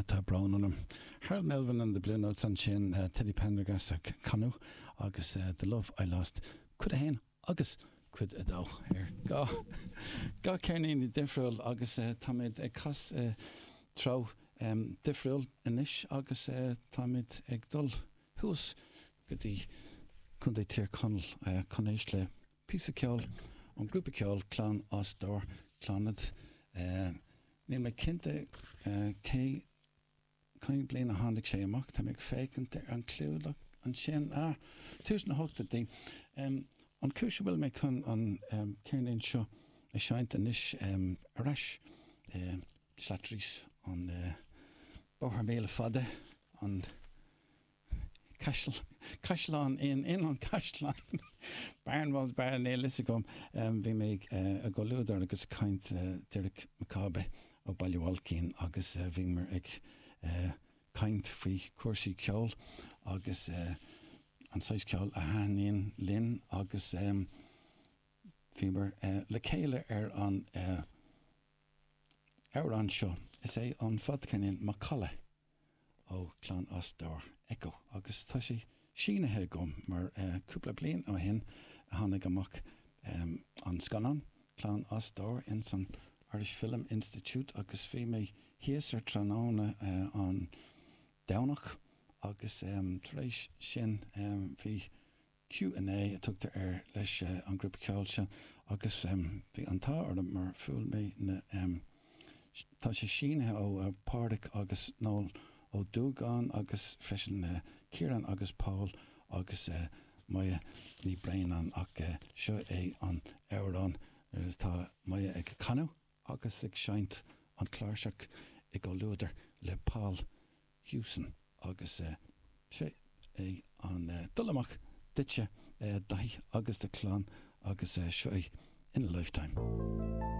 Tá brón orm. Harold Melvin and the Blue Notes ansin, Teddy Pendergast ag canadh agus The Love I Lost cuid a haon agus cuid a dó ar dhá ceirnín difriúil agus táimid ag cas i dtreo difriúil anois agus táimid ag dul thuas go dtí Contae Thír Chonaill chun éist le Píosa ceoil ón grúpa ceoil Clann as Dobhar, Clannad. Níl mé cinnte cé cén bliain a tháinig sé amach, tá mé ag féachaint ar an clúdach ansin, ah, tús na hochtóidí. An chúis a bhfuil mé chun an ceirnín seo a seinnt anois, ar ais i Slattery's, an Bóthar Míle Fada, an. caisleán in in an Caisleán Barnwall Bar níl a fhios agam Bhí mé i gcomhluadar agus ag caint Deiric Mac Cába ó Baile Bhailcín agus bhíomar ag caint faoi chúrsaí ceoil agus an saghas ceoil a thaitníonn linn agus bhíomar le chéile ar an amhrán seo Is é an fadcheirnín Macalla. ó Chlann as Dobhar Echo agus tá sé sínithe agam mar cúpla bliain ó shin a tháinig amach an scannán Clann as Dobhar ins an Irish Film Institute agus bhí mé thíos ar tráthnóna an Domhnach agus tar éis sin bhí Q&A a tugtar air leis an ghrúpa ceoil seo agus bhí an t-ádh orm mar bhuail mé na tá sé sínithe ó Páraic agus Noel Ó Dúgáin agus freisin Ciarán agus Pól agus Moya Ní Bhraonáin ach seo é an amhrán atá Moya ag canadh. agus ag seinnt an cláirseach i gcomhluadar le Paul Hewson agus seo é ag dul amach duitse Daithí agus do chlann agus seo é In a Lifetime.